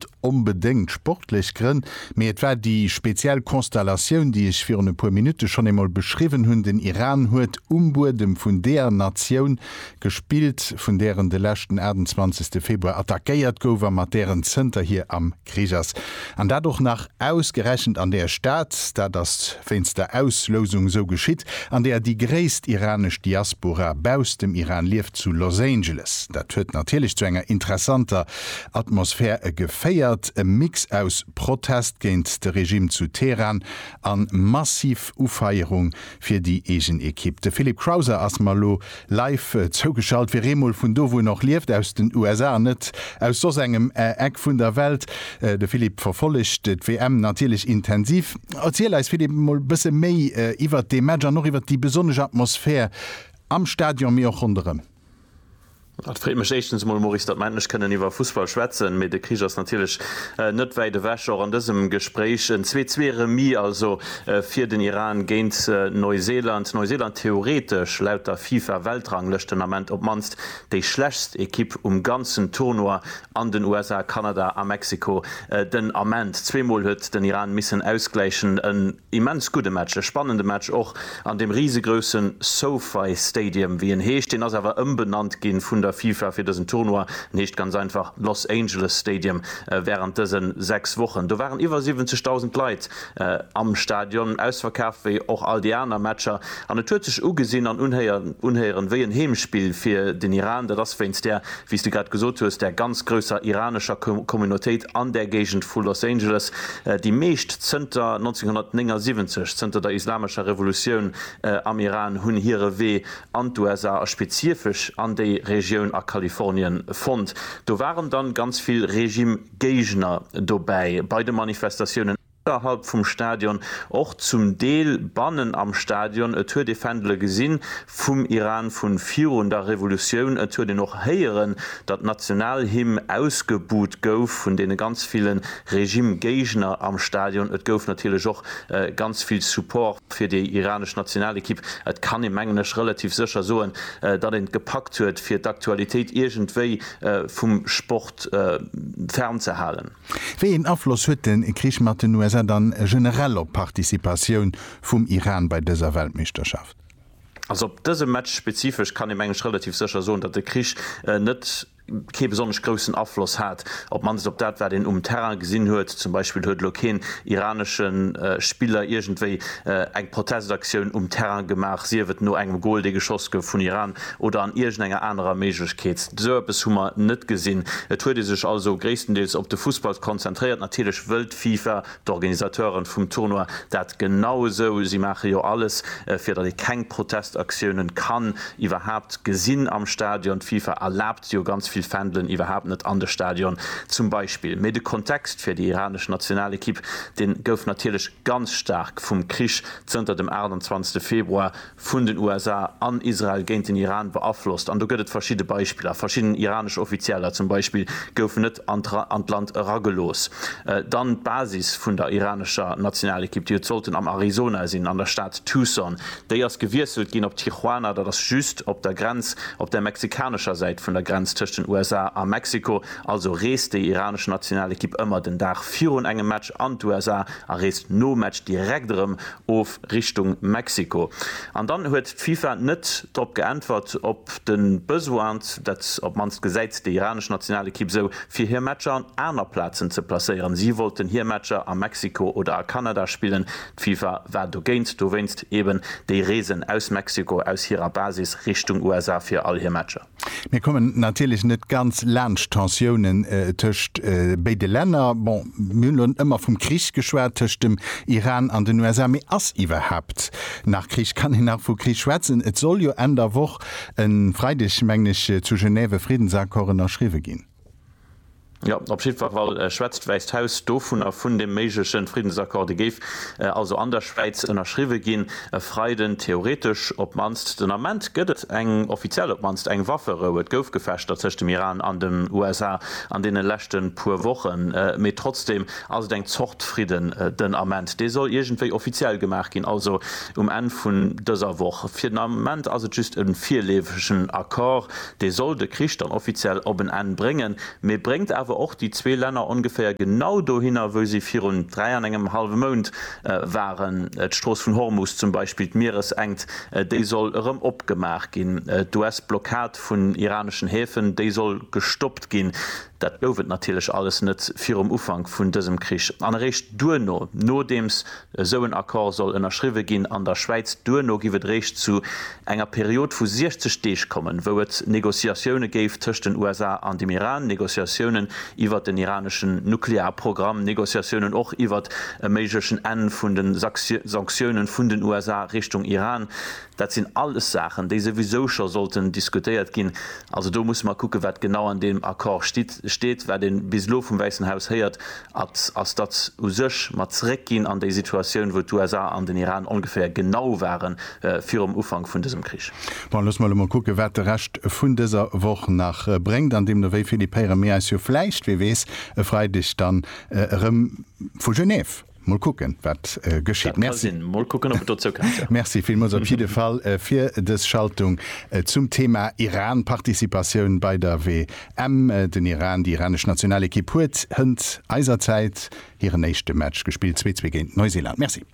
net onbedéngt sportlech Grënn, mee et war déi speziell Konstellatioun, déi ech virun e puer Minutte schonn eemol beschriwwen hunn. Den Iran huet um Buedem vun deeër Natioun gespillt, vun där en de leschten 28. Februar attackéiert gouf a mat där en zënterhier am Krich ass. An dat och nach ausgerechent an där Stad, dat ass wéinst der Auslousung esou geschitt, an där déi gréisst iranesch Diaspora bausst dem Iran lieft, zu Los Angeles. Dat huet natierlech zu enger interessanter Atmosphär e geféiert, e Mix aus Protest géint de Regime zu Teheran an massiv Ufeierung fir déi eegen Ekipp. De Philippe Crowther ass mer elo live zougeschalt, fir eemol vun do wou en och lieft, aus den USA an net aus soss engem Eck vun der Welt. De Philippe verfollegt d'WM natierlech intensiv. Erziel eis Philippe emol bësse méi iwwert dee Match an och iwwert déi besonnesch Atmosphär am Stadion mee och ronderëm. Et freet mech éischtens emol, Maurice, datt mer endlech kënnen iwwer Fussball schwätzen, mee de Krich ass natierlech net wäit ewech, och an dësem Gespréich. En Zwee-Zwee-Remis also fir den Iran géint Neuseeland. Neuseeland theoretesch laut der FIFA-Weltranglëschten Ament op d'mannst déi schlechtst Ekipp um ganzen Tournoi an den USA, Kanada a Mexiko den Ament. Zweemol huet den Iran missen ausgläichen. Immens gudde Match, e spannende Match och an deem risegroussen SoFi Stadium, wéi en heescht. Deen ass awer ëmbenannt ginn vun der FIFA fir dësen Tournoi. En heescht ganz einfach Los Angeles Stadium wärend dësen 6 Wochen. Do waren iwwer 70.000 Leit am Stadion, ausverkaaft wéi och all déi aner Matcher. An et huet sech ugesinn an unhéieren wéi en Heemspill fir den Iran. Dat ass wéinst där wéi s de grad gesot hues, der ganz grousser iranescher Communautéit an där Géigend vu Los Angeles, déi meescht zënter 1979, zënter der islamescher Revolutioun am Iran, hunn hire Wee an d'USA a spezifesch an déi Regioun a Kalifornien fonnt. Do waren dann ganz vill Regime-Géigner dobäi bei de Manifestatiounen. Ënnerhalb vum Stadion, och zum Deel bannen am Stadion. Et huet ee Fändele gesinn vum Iran vu virun der Revolutioun. Et huet een och héieren, datt d'Nationalhymn ausgebuht gouf vun deene ganz ville Regime-Géigner am Stadion. Et gouf natierlech och ganz vill Support fir déi iranesch Nationalequipe. Et kann ee, mengen ech, relativ sécher soen, datt een et gepackt huet, fir d'Aktualitéit iergendwéi vum Sport fernzehalen. Wéi een Afloss huet de Krich mat den USA dann generell op d'Participatioun vum Iran bei dëser Weltmeeschterschaft? Also op dëse Match spezifesch kann ee meng ech relativ sécher soen, datt de Krich net kee besonnesch groussen Afloss hat, op d'mannst op dat wat een um Terrain gesinn huet. Zum Beispill huet elo keen iranesche Spiller iergendwéi eng Protestaktioun um Terrain gemaach, sief et no engem Gol dee geschoss gouf vun Iran, oder an iergendenger anerer Méiglechkeet. Esou eppes hu mer net gesinn. Et huet ee sech also gréisstendeels op de Fussball konzentréiert. Natierlech wëllt d'FIFA, d'Organisateuren vum Tournoi, dat genau esou. Si maache jo alles, fir datt ee keng Protestaktiounen kann iwwerhaapt gesinn am Stadion. D'FIFA erlaabt jo ganz vill Fändelen iwwerhaapt net an de Stadion zum Beispill. Mee de Kontext fir déi iranesch Nationalekipp, dee gouf natierlech ganz staark vum Krich zënter dem 28. Februar vun den USA an Israel géint den Iran beaflosst an do gëtt et verschidde Beispiller. Verschidden iranesch Offizieller zum Beispill goufen net an d'Land eragelooss. Dann d'Basis vun der iranescher Nationalekipp, déi huet sollten am Arizona sinn, an der Stad Tucson, déi ass gewiesselt ginn op Tijuana, dat ass just op der Grenz, op der mexikanescher Säit vun der Grenz tëscht den USA a Mexiko. Also reest déi iranesch Nationalekipp ëmmer den Dag virun engem Match an d'USA a reest nom Match direkt erëm of. Richtung Mexiko. An dann huet d'FIFA net drop geäntwert op de Besoin, dat op d'mannst gesäit déi iranesch Nationalekipp esou, fir hir Matcher an aner Plazen ze placéieren. Si wollten hir Matcher a Mexiko oder a Kanada spillen. D'FIFA war dogéint, dowéinst eben déi Reesen aus Mexiko, aus hirer Basis Richtung USA fir all hir Matcher. Mir kommen natierlech net ganz laanscht d'Tensiounen tëscht béide Länner. Bon, mir hunn elo ëmmer vum Krich geschwat tëscht dem Iran an den USA. Mee ass iwwerhaapt nach Krich? Kann een nach vu Krich schwätzen? Et soll jo Enn der Woch, e Freideg mengen ech, zu Genève e Friddensaccord ënnerschriwwe ginn. Jo, op jiddwer Fall schwätzt d'Wäisst Haus dovunner, vun deem méiglechen Friddensaccord. Dee géif also an der Schwäiz ënnerschriwwe ginn e Freiden, theoretesch op d'mannst. Den Ament gëtt et eng, offiziell op d'mannst eng Wafferou. Et gouf Gefechter tëscht dem Iran an den USA an deene leschte puer Wochen, mee trotzdeem ass et eng Zort Fridden den Ament. Dee soll iergendwéi offiziell gemaach ginn, also um Enn vun dëser Woch. Fir den Ament ass et just e virleefegen Accord. Dee soll de Krich dann offiziell op en Enn bréngen, mee bréngt awer och déi zwee Länner ongeféier genau dohinner, wou si virun dräi an engem hallwe Mount waren. D'Strooss vun Hormus zum Beispill, d'Mieresenkt, déi soll erëm opgemaach ginn. D'US-Blockad vun iraneschen Häfen, déi soll gestoppt ginn. Dat gouf et natierlech alles net virum Ufank vun dësem Krich. An eréischt duerno, nodeems esou en Accord soll ënnerschriwwe ginn an der Schwäiz, duerno giff et eréischt zu enger Period vu 60 Deeg kommen, wou et Négociatioune géif tëscht den USA an dem Iran, Négociatiounen iwwert den iraneschen Nuklearprogramm, Négociatiounen och iwwert e méiglechen Enn vun de Sanktioune vun den USA Richtung Iran. Dat sinn alles Saachen, déi souwisou scho sollten diskutéiert ginn. Also do musse mer kucken, wat genau an deem Accord stitt, steet. Wat ee bis elo vum Wäissen Haus héiert, at, ass, datt u sech mer zréckginn an déi Situatioun, wou d'USA an den Iran ongeféier genau ware virum Ufank vun dësem Krich. Bon, loosse mer elo mol kucken, wat de Rescht vun dëser Woch nach bréngt. An deemno, wéi Philippe, héiere mir eis jo vläicht, wie weess, e Freideg dann erëm vu Genève. Mol kucken wat geschitt. Merci. Mol kucken op et dozou kennt jo. Merci villmols op jidde Fall fir des Schaltung zum Thema Iran Participatioun bei der WM. Den Iran, déi iranesch Nationalekipp huet hënt eiser Zäit hiren éischte Match gespillt, zwee zwee géint Neuseeland. Merci.